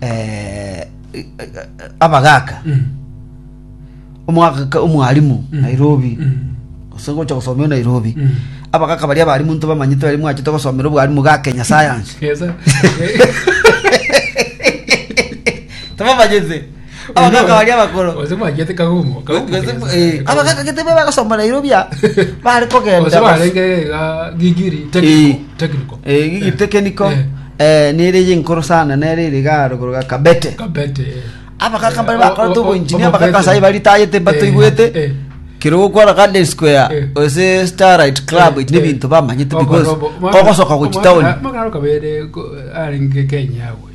eh, abagaka Mm. omwagaka omwalimu Mm. nairobi Mm. gose gocha gosomio nairobi Mm. abagaka baria abalimu ntibamanyete bari mwachete gosomera obwalimu ga kenya science Yes, sir. tibamanyete abagaka baria abakoro Ose mwagete kagumo. kagumo Gose- kesa. eh, abagaka gete be bagosoma nairobi a bare Ose kogenda barenge ga gigiri Eh. technical. Technical. Eh, gigi tekeniko Eh. nere ye nkoro sana nere ere ga rogoro ga kabete Kabete. eh. abagaka bare Eh, bakora o- o- togo o- engineer omobete. abagaka sai baritayete Eh, batoigwete eh. kero gokora garden square Eh. ose starlight club Eh, ne eh. bintu bamanyete Omoro- because omo- ogosoka gochi omoro- town omoro kabere ko- arenge Kenya agwe.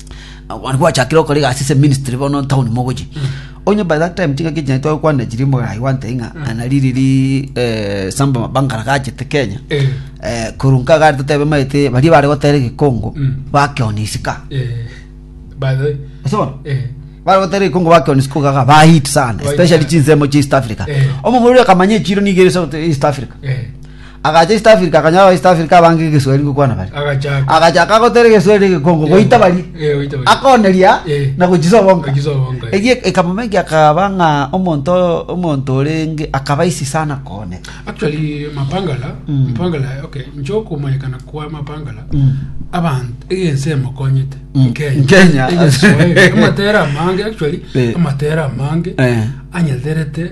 Okona gwachakire okora egasi ase ministry bono town mogochi. Onye by that time chingaki chane twakwana chiri mogarai gwante ng'a ana riri ri eh, samba mabangara gachete Kenya. Eh. Eh, kurunka gari totebe maete bari bare gotera egekongo Mm. bakeoni isika. Eh, by the way, Ase bono? eh, Bare gotera egekongo bakeoni isika ogaga ba hit sana, Ba hit especially sana. chinsemo chia East Africa. Eh. Omomura akamanya echiro niga ere sote East Africa. eh, Agacha East Africa, akanyora aba-East Africa abange egeswahili gokwana baria. agachaka Agachaka gotera egeswahili egekongo, goita baria. Eh, goita baria. Akoneria Eh. na gochisobonka. Gochisobonka, eh. Egie ekamomenkia akaba ng'a omonto omonto orenge akaba isi sana kooneka. actually mapangala Mm. mapangala okay ncho kumanyekana kwa mapangala Mm. abantu egense emokonyete Mm. Kenya. Egensoe, amatera amange actually Eh. amatera amange Eh. anyeterete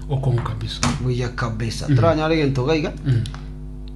Okonka biso. Buya kabisa. Toranyare egento iga iga. Mm.